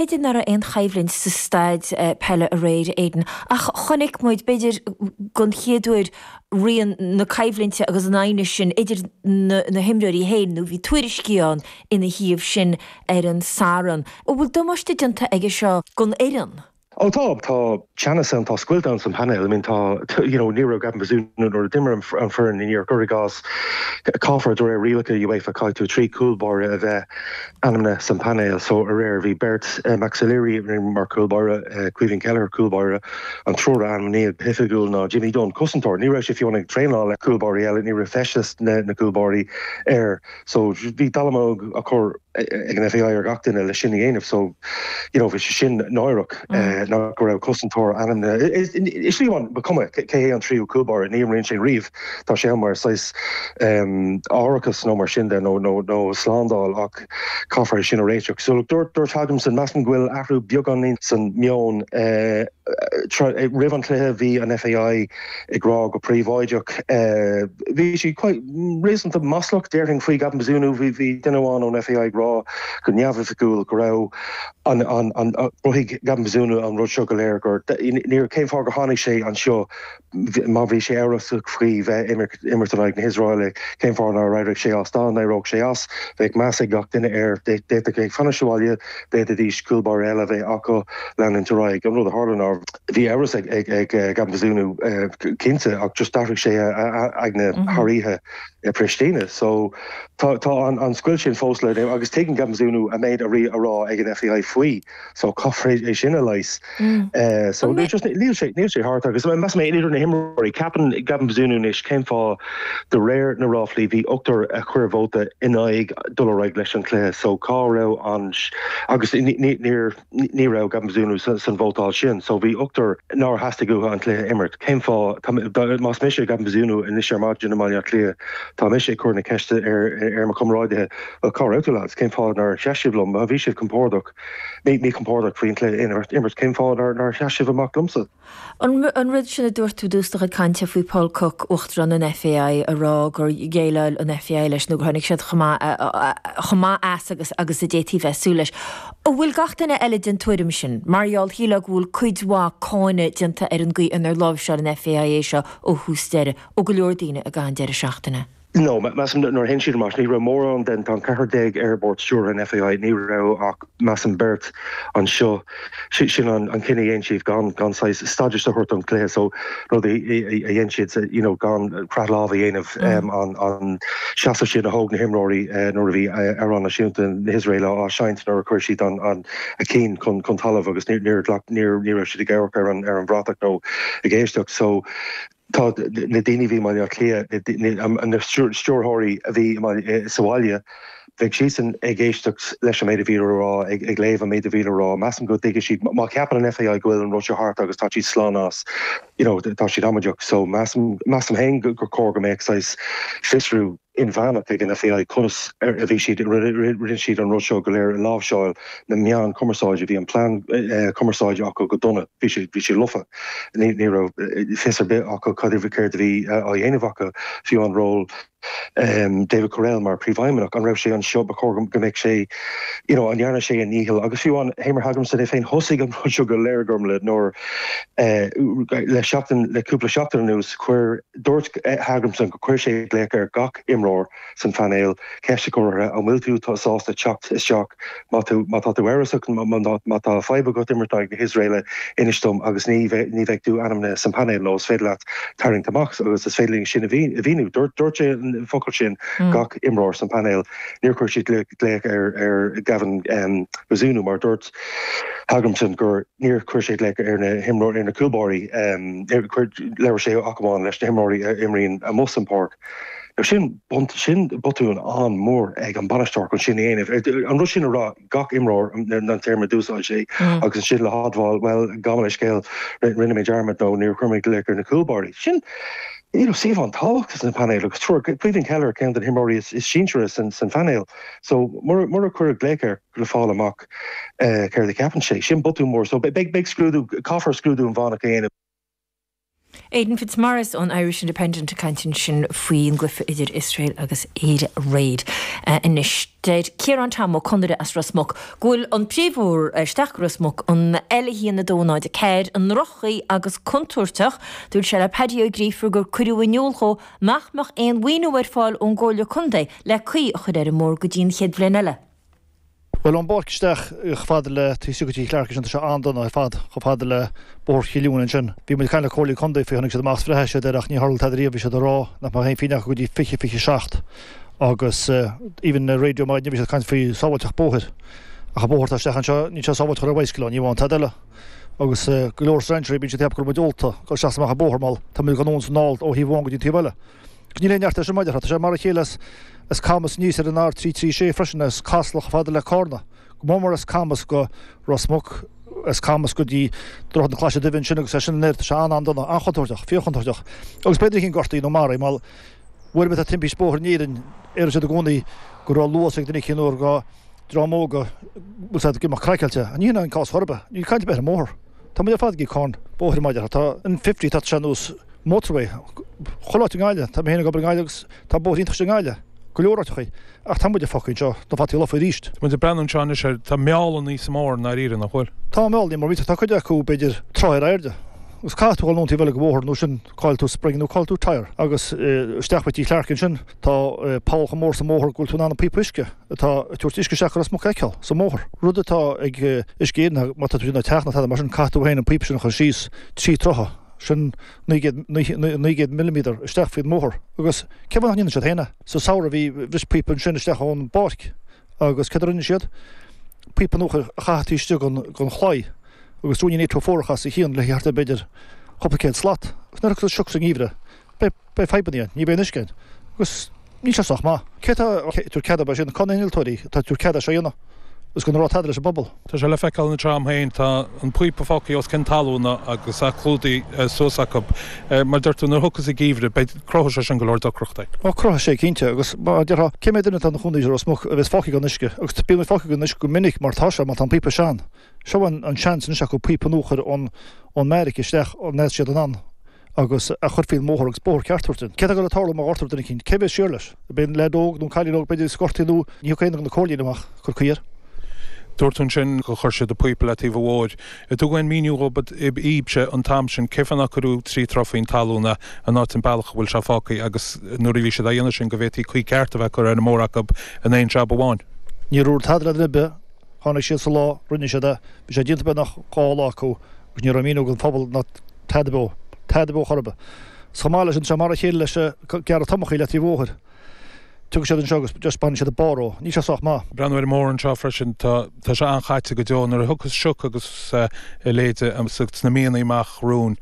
B'fhéidir nach raibh aon choimhlint sa staid pheile aréir, Aidan, ach chonaic muid, b'fhéidir den chéad uair, rian na coimhlinte agus an aighnis sin idir na himreoirí féin, nó bhí tuairiscí ann ina thaobh sin ar an Satharn. An bhfuil damáiste déanta aige seo don fhoireann? Ó tá, tá. Teannas ann, tá scoilt ann san painéal, I mean tá you know ní raibh Gavin Bazunu nuair a d'imir an fhoireann aréir, cuir i gcás, caithfear de réir rialacha UEFA caithfidh tú trí cúl báire a bheith ainmnithe san painéal so aréir bhí beirt, Max O'Leary a d'imir mar cúl báire, Caoimhín Kelleher cúl báire, an triúr a ainmníodh go hoifigiúil ná Jimmy Dunne, cosantóir, ní raibh sé fiú ann ag traenáil le cúl báirí eile, ní raibh feisteas na cúl báirí air. So bhí dallamullóg á chur ag an FAI ar gach duine leis sin a dhéanamh, so you know bhí sé sin náireach ach go raibh cosantóir ainmnithe. Is fiú má ba chuma cé hé an tríú cúlbáire, ní imríonn sé riamh, tá sé ann mar saghas árachas nó mar sin de nó nó slándáil ach caithfear é sin a réiteach. So look dúirt dúirt Hallgrímsson, measaim go bhfuil athrú beagáinín san meon roimh an cluiche bhí an FAI, ag rá go príobháideach, bhí siad réasúnta maslach, déarfainn, faoi Gavin Bazunu. Bhí duine amháin ón FAI ag rá go neamhoifigiúil go raibh an, an, an, chruthaigh Gavin Bazunu an rud seo go léir, gur níor, cén fáth gur tháinig sé anseo má bhí sé amhrasach faoi bheith ag imirt in aghaidh na hIosraelaigh, cén fáth nár éirigh sé as, dá n-éireodh sé as, bheadh meas ag gach duine air, d'fhéadfadh sé fanacht sa bhaile, d'fhéadfaidís cúl báire eile a bheith acu leanúint ar aghaidh, an rud a tharla ná. Bhí amhras ag Gavin Bazunu cinnte ach just d'athraigh sé a aigne thar oíche i Pristina. So tá an scoilt sin fós le leigheas agus tuigeann Gavin Bazunu an méid a bhí á rá ag an FAI faoi so caithfear é sin a leigheas. So níl sé thart agus measaim mé idir na himreoirí, ceapann Gavin Bazunu anois cén fáth de réir na ráflaí bhí ochtar a chuir vóta in aghaidh dul ar aghaidh leis an cluiche so cá raibh an agus níor Ní raibh Gavin Bazunu san vótáil sin so bhí ochtar nár theastaigh uathu an cluiche a imirt. Cén fáth? Más mise Gavin Bazunu anois ar maidin i mBaile Átha Cliath tá mise ag cur na ceiste ar mo chomráidithe, bhuel cá raibh tú lads? Cén fáth nár sheas sibh liom? Má bhí siad compordach, míchompordach faoin cluiche a imirt. Cén fáth nár sheas sibh amach liomsa? An rud sin a dúirt tú i dtús do chuid cainte faoi Paul Cooke, Uachtarán an FAI, ag rá gur dhéileáil an FAI leis nó gur tháinig siad chomh maith chomh maith as agus agus a d'fhéadfaí bheith ag súil leis, an bhfuil gach duine eile den tuairim sin? Mar gheall, shílfeá, go bhfuil cuid mhaith cáinte déanta ar an gcaoi inar láimhseáil an FAI é seo ó thús deireadh, ó go leor daoine, i gcaitheamh an deireadh seachtaine. No, measaim nuair a théann siad amach, ní raibh mórán den, tá an ceathrar déag ar bhord stiúrtha an FAI, ní raibh ach measaim beirt anseo, sin an cinneadh a dhéan siad gan gan saghas stádas a thabhairt don chluiche so rud a a dhéan siad you know gan croitheadh lámh a dhéanamh um an an seasamh sin a thóg na himreoirí nuair a bhí amhrán náisiúnta na hIosraeile á seinnt nuair a chuir siad an an a cinn chun chun talaimh agus níor níor ghlac níor ní raibh siad ag amharc ar an ar an bhratach nó ag éisteacht so Tá na daoine a bhí i mBaile Átha Cliath, na stiúrthóirí a bhí sa bhaile, bheidh siadsan ag éisteacht leis an méid a bhí le rá, ag léamh an méid a bhí le rá. Measaim go dtuigfidh siad, má cheapann an FAI go bhfuil an rud seo thart agus tá siad slán as, you know, tá siad amaideach. So measaim, measaim féin gur chóir go mbeadh saghas fiosrú. inmheánach ag an FAI conas a bhí siad rinne siad an rud seo go léir a láimhseáil na meáin cumarsáide bhí an plean cumarsáide acu go dona bhí sé bhí sé lofa ní raibh fios ar bith acu cad a céard a bhí á dhéanamh acu fiú an ról David Courell mar príomhfheidhmeannach an raibh sé anseo ba chóir go mbeadh sé you know an ndearna sé a ndícheall agus fiú an Heimir Hallgrímsson é féin thosaigh an rud seo go léir Gormla le nuair le seachtain le cúpla seachtain anuas chuir Dúirt Hallgrímsson gur chuir sé glaoch ar gach imreoir san phainéal, ceist a chur orthu, an bhfuil tú sásta teacht isteach? Má tá tú amhrasach nó má tá fadhb agat imirt in aghaidh na hIosraeile, inis dom agus ní bheidh tú ainmnithe san phainéal nó is féidir leat tarraingt amach agus is féidir linn sin a mhíniú. Dúirt sé an focal sin, gach imreoir san phainéal. Níor chuir sé glaoch ar Gavin Bazunu mar a dúirt. Hallgrímsson gur níor chuir sé glaoch ar na himreoirí, ar na cúlbáirí, labhair sé ach amháin leis na himreoirí a imríonn amuigh san pháirc. Now sin bun, sin botún an-mhór ag an bainisteoir chun sin a dhéanamh, an rud sin a rá gach imreoir, an téarma a d'úsáid sé, agus ansin le hadmháil, bhuel, gabh mo leithscéal, rinne mé dearmad nó níor chuir mé glaoch ar na cúlbáirí. Sin, you know, suíomh an-tábhachtach san painéal agus triúr, Caoimhín Kelleher, ceann de na himreoirí is sinsearaí san phainéal, so mura, mura cuireadh glaoch air, le fáil amach céard a cheapann sé. Sin botún mór. So beidh scrúdú, caithfear scrúdú inmheánach a dhéanamh. Aidan Fitzmaurice ón Irish Independent ag caint ansin faoin gcluiche idir Iosrael agus Éire aréir. Anois, deir Ciarán Tom Ó Conaire as Ros Muc go bhfuil an príomhbhóthar isteach go Ros Muc, an L1 204, i ndroch-chaoi agus contúirteach. Dúirt sé le Paddy Ó Gríofa gur cuireadh in iúl dhó nach mbeadh aon mhaoiniú ar fáil ón gComhairle Contae le caoi a chur ar an mbóthar go dtí an chéad bhliain eile. Bhuel an bóthar isteach chomh fada le Taobh Istigh de Cheathrú Chlearcais, tá sé an-dona ar fad, chomh fada le Bóthar Chill Iúin ansin. Bhí muid ag caint le Comhairle Contae faoi, tháinig siad amach is bhreathnaigh siad air ach níor tharla tada riamh, bhí siad ag rá nach mbeadh aon phínn acu go dtí 2027 agus even ar raidió maidine bhí siad ag caint faoi sábháilteacht bóthair. Ach an bóthar atá isteach anseo, níl sé sábháilte a ghabháil ar bhicycle ann, ní amháin, tada eile. Agus go leor strainséirí, bíonn siad ag ceapadh go raibh muid ólta, dul isteach is amach an bóthar, mar tá muid ag gabháil anonn is anall ó thaobh amháin go dtí an taobh eile. Níl aon neart air sin, mar a déarfá. Tá sé mar a chéile as Camas aníos ar an R336 freisin, as Casla chomh fada le Carna, go mór mór as Camas go Ros Muc, as Camas go dtí Droichead na Claise Duibhe ansin agus as sin in airde. Tá sé an-an-dona, an-chontúirteach, fíorchontúirteach. Agus b'fhéidir a chionn gortaithe nó maraithe, mar uaireanta a bhíonn timpiste bóthair in Éirinn, deireann siad i gcónaí go raibh luas ag duine éicínt nó gur dream óg a bhfuil siad ag imeacht craiceáilte. Ní shin é an cás chor ar bith. Níl caint ar bith ar an mbóthar. Tá muid ar fad ag íoc cáin bhóthair i mBaile Átha. Tá an fifty, tá sé ar nós motorway chomh láidir i nGaillimh. Tá mé féin ag obair i nGaillimh agus tá bóithre iontach istigh i nGaillimh, go leor áiteacha. Ach tá muid fágthaí anseo le bóithrí lofa arís. Tá muid ag breathnú anseo anois ar, tá meall níos mó ar an ndáiríre, nach bhfuil? Tá meall, nach mór méadar. Tá cuid acu, b'fhéidir, troigh ar airde. Agus caithfidh tú dhul anonn taobh eile den bhóthar nó sin caillfidh tú spring nó caillfidh tú tyre agus isteach go dtí Clarke ansin. Tá poll chomh mór sa mbóthar go bhfuil tú in ann an píopa uisce atá ag tabhairt uisce isteach go Ros Muc a fheiceáil sa mbóthar. Rud atá ag Uisce Éireann ná má tá tú ag déanamh teach nó tada mar sin caithfidh tú féin an píopa sin a chur síos trí troithe, sin naoi gcéad, naoi gcéad millimeter, isteach faoin mbóthar. Agus cén fáth nach ndéanann siad féin é? Sa samhradh bhí, bhris píopa ansin isteach ón mbeairic agus céard a rinne siad? Píopa nua a chaitheadh taobh istigh den chlaí agus ruainnín créafóige os a chionn le haghaidh thart ar b'fhéidir cúpla céad slat. Agus nuair a thiocfas sioc sa ngeimhreadh? Beidh fadhbanna ann, ní bheidh aon uisce ann agus níl sé sách maith. Cé atá ag tabhairt cead dóibh sin? Cé na hinnealtóirí atá ag tabhairt cead é seo a dhéanamh agus gan a rá tada leis an bpobal? Tá sé le feiceáil ina trom féin, tá an píopa fágtha os cionn talúna agus é clúdaithe suas acu. Mar a deir tú, nuair a thiocfas an geimhreadh, beidh, cruthóidh sé sin go leor deacrachtaí. Ó, cruthóidh sé cinnte, agus mar a déarfá, cé mhéad duine atá ina chónaí i Ros Muc a bheas fágtha gan uisce? Agus bíonn muid fágtha gan uisce go minic mar tá sé, mar tá an píopa sean. Seo an seans anois acu píopa nua a chur ón mbeairic isteach, an mbeidh siad in ann? agus a chur faoin mbóthar agus bóthar ceart a thabhairt dúinn. Céard atá ag dul ag tarlú má ghortaítear duine éicint? Cé a bhéas siar leis? Beidh an leaid óg nó an cailín óg, b'fhéidir, is gortaithe nó ní thiocfaidh aon duine de na comhairlí amach ag cur caoi air. Dúirt tú ansin gur chuir siad an píopa le taobh an bhóthair. Ar tugadh aon mhíniú ar bith dhaoibhse an t-am sin cén fáth nár cuireadh trí troigh faoin talún é, an áit, an bealach a bhfuil sé fágtha agus nuair a bhí siad á dhéanamh sin go bhféadfaí caoi ceart a bheith curtha ar an mbóthar acu in aon jab amháin. Níor dúradh tada le duine ar bith. Tháinig siad sa lá, rinne siad é, bhí sé déanta beagnach dhá lá acu agus ní raibh míniú don phobal ná tada beo, tada beo chor ar bith. Is chomh maith leis sin, mar a chéile leis an gearradh tomachaí le taobh bhóthair. Tiocfaidh siad anseo agus just bainfidh siad an barr dhó. Níl sé sách maith. Breathnú ar an mbóthar seo freisin, tá sé an-chaite go deo. Nuair a thiocfas sioc agus a leithéide sna míonnaí amach romhainn,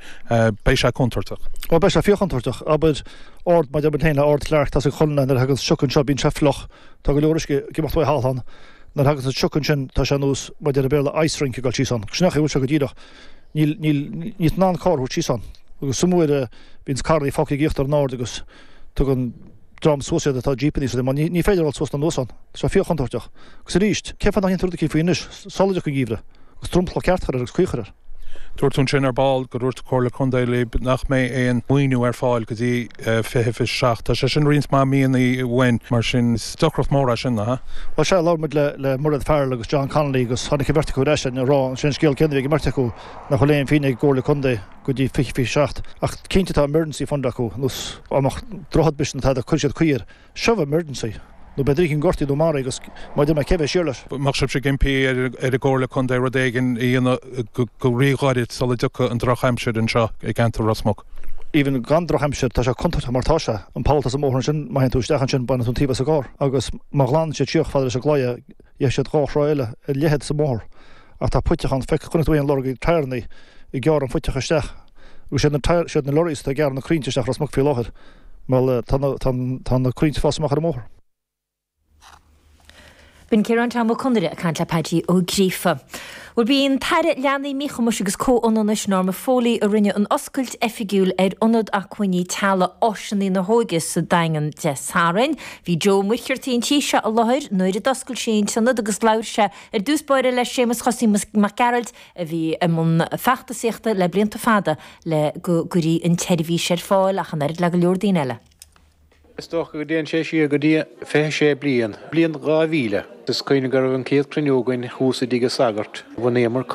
beidh sé contúirteach. Ó beidh sé fíorchontúirteach. Abair ard, mar a deir muid féin le Ard Clarke, tá sé go dona nuair a thaganns sioc anseo, bíonn sé fliuch, tá go leor uisce ag imeacht uaidh thall ann. Nuair a thaganns an sioc ansin, tá sé ar nós, mar a deir an Béarla, ice rink ag dul síos ann. Sin é an chaoi a bhfuil sé go díreach. Níl, níl, níl tú in ann carr a thabhairt síos ann. Agus is iomaí uair a bhíonns carrannaí fágtha ag íochtar an aird agus tugann dream suas iad atá jípeannaí sa linn, mar ní, ní féidir a dhul suas ná anuas ann. Tá sé fíorchontúirteach. Agus arís, cén fáth nach ndéantar rud eicínt faoi anois? Sula dtiocfaidh an geimhreadh, agus dromchla ceart a chur air agus caoi a chur air. Dúirt tú ansin ar ball go dúirt Comhairle Contae libh nach mbeidh aon mhaoiniú ar fáil go dtí fiche fiche seacht. Tá sé sin roinnt mhaith míonna uainn, mar sin is deacracht mór é sin, nach ea? Bhuel, sea, labhair muid le Mairéad Farrell agus John Connolly agus tháinig an bheirt acu ar ais linn ag rá ansin scéal céanna a bhí ag an mbeirt acu, nach bhfuil aon phingin ag an gComhairle Contae go dtí fiche fiche seacht. Ach cinnte tá emergency fund acu, nós an droichead, b'shin, atá, go gcuir siad caoi air. seo emergency, nó beidh duine gortaithe nó maraithe agat maidir le cé bheidh siar leis. Bheadh sibhse ag impí ar an gComhairle Contae rud éigin a dhéanamh go ríghairid sula dtiocfadh an drochaimsir anseo i gceantar Ros Muc. Even gan drochaimsir, tá sé contúirteach mar tá sé. An poll atá sa mbóthar ansin, má théann tú isteach ansin, baineann tú an taobh as an gcarr. Agus má ghlanann siad síos fada leis an gclaí é, Bheadh dhá throigh eile de leithead sa mbóthar, ach tá puiteach ann feiceann tú an lorg tyreannaí ag gearradh an phuiteacha isteach. Agus siad na, siad na lorries atá ag gearradh na croinnte isteach i Ros Muc faoi láthair, bhuel, tá na, tá na, tá na croinnte ag fás amach ar an mbóthar. B'in Ciarán Tom Ó Conaire ag caint le Pádaí Ó Gríofa. Bhuel, b'í an tAire Leanaí, Míchumais agus Comhionannais, Norma Foley, a rinne an oscailt oifigiúil ar Ionad Acmhainní Teaghlaigh Áiseanna na hÓige sa Daingean Dé Sathairn. Bhí Joe Ó Muircheartaigh an tí seo i láthair nuair a d'oscail sí an t-ionad agus labhair sé ar dtús báire le Séamus Chosaí Mac Gearailt a bhí i mbun feachtasaíochta le blianta fada le go gcuirfí an tseirbhís ar fáil ach an oiread le go leor daoine eile. Is dócha go dtéann sé siar go dtí 26 bliain, bliain 2000. Is cuimhin liom go raibh an chéad chruinniú againn thuas i dtigh an sagairt, bhunaíomar